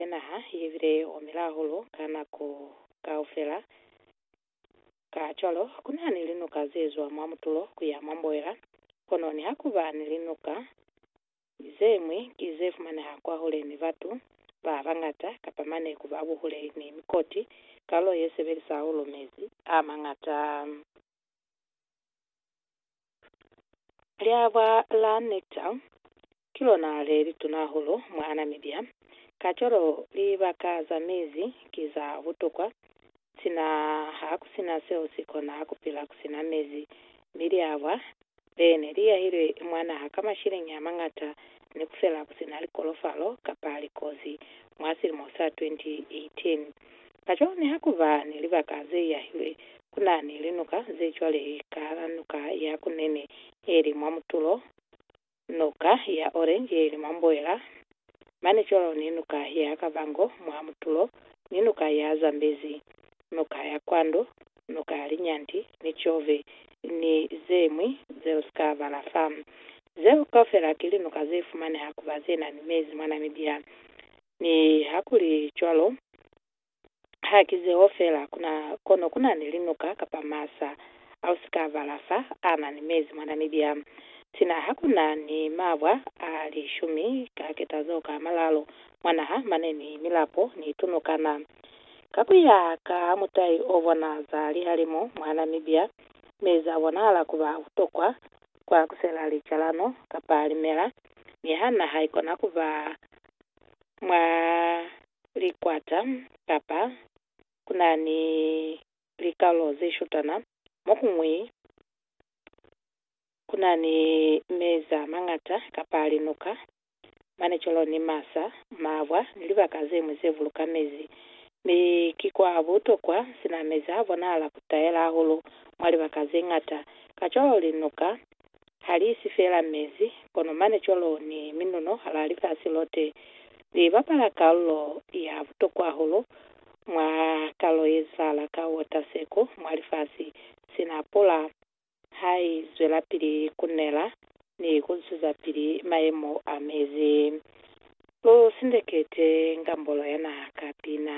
ya naha ye bile ye omile hahulu ka nako kaufela. Kacwalo, ku na ni linuka ze zwa mwa mutulo ku ya mwa mboela, kono niha ku ba ni linuka ze ñwi ki ze fumaneha kwahule ni batu ba bañata kapa mane ku ba buhule ni mikoti, karolo ye sebelisa hahulu mezi a mañata. Liabwa la nekta ki lona le lituna hahulu mwa Namibia, kacwalo libaka za mizi ki za butokwa sina ha ku sina seo si kona ku pila ku sina mizi, mi liabwa le ne li yahilwe mwa naha ka mashilenge a mañata ni ku fela ku si na likolofalo kapa likozi mwa silimo sa 2018. Kacwalo niha ku ba ni libaka ze yahilwe, ku na ni linuka ze cwale kahal'a Nuka ya Kunene ye li mwa mutulo, Nuka ya Orange ye li mwa mboela, mane cwalo ni Nuka ya Kavango mwa mutulo, ni Nuka ya Zambezi. Nuka ya Kwando, Nuka ya Linyanti, ni Chove, ni zeñwi zeo sika bala fa. Zeo kaufela ki linuka ze fumaneha kuba ze na ni mezi mwa Namibia. Mi hakuli cwalo, ha ki zeo fela, kuna, kono kuna ni linuka kapa masa a u sika bala fa a na ni mezi mwa Namibia. Sina hakuna ni mabwa a lishumi ka ketazo ka malalo mwa naha mane ni milapo ni tunukana. Ka ku ya ka mutai o bona za lihalimu mwa Namibia, mi za bonahala ku ba butokwa kwa kusela licalano kapa limela, mi ha naha ikona ku ba mwa likwata kapa ku na ni likalolo ze shutana, mo ku ñwi ku na ni mezi a mañata kapa linuka manicolo ni masa, mabwa, ni libaka zeñwi ze buluka mezi. Mi ki kwa butokwa, sina mezi a bonahala ku tayela hahulu mwa libaka ze ñata. Kacwalo linuka ha li isi feela mezi, kono manicolo ni minuno halaa lifasi lote li bapala kalulo ya butokwa hahulu mwa kalo ye zwala ka wota seko mwa lifasi sina pula. ha i zwelapili ku nela ni ku zwezapili mayemo a mezi. Lu sindekete ngambolo ya naha ka pina.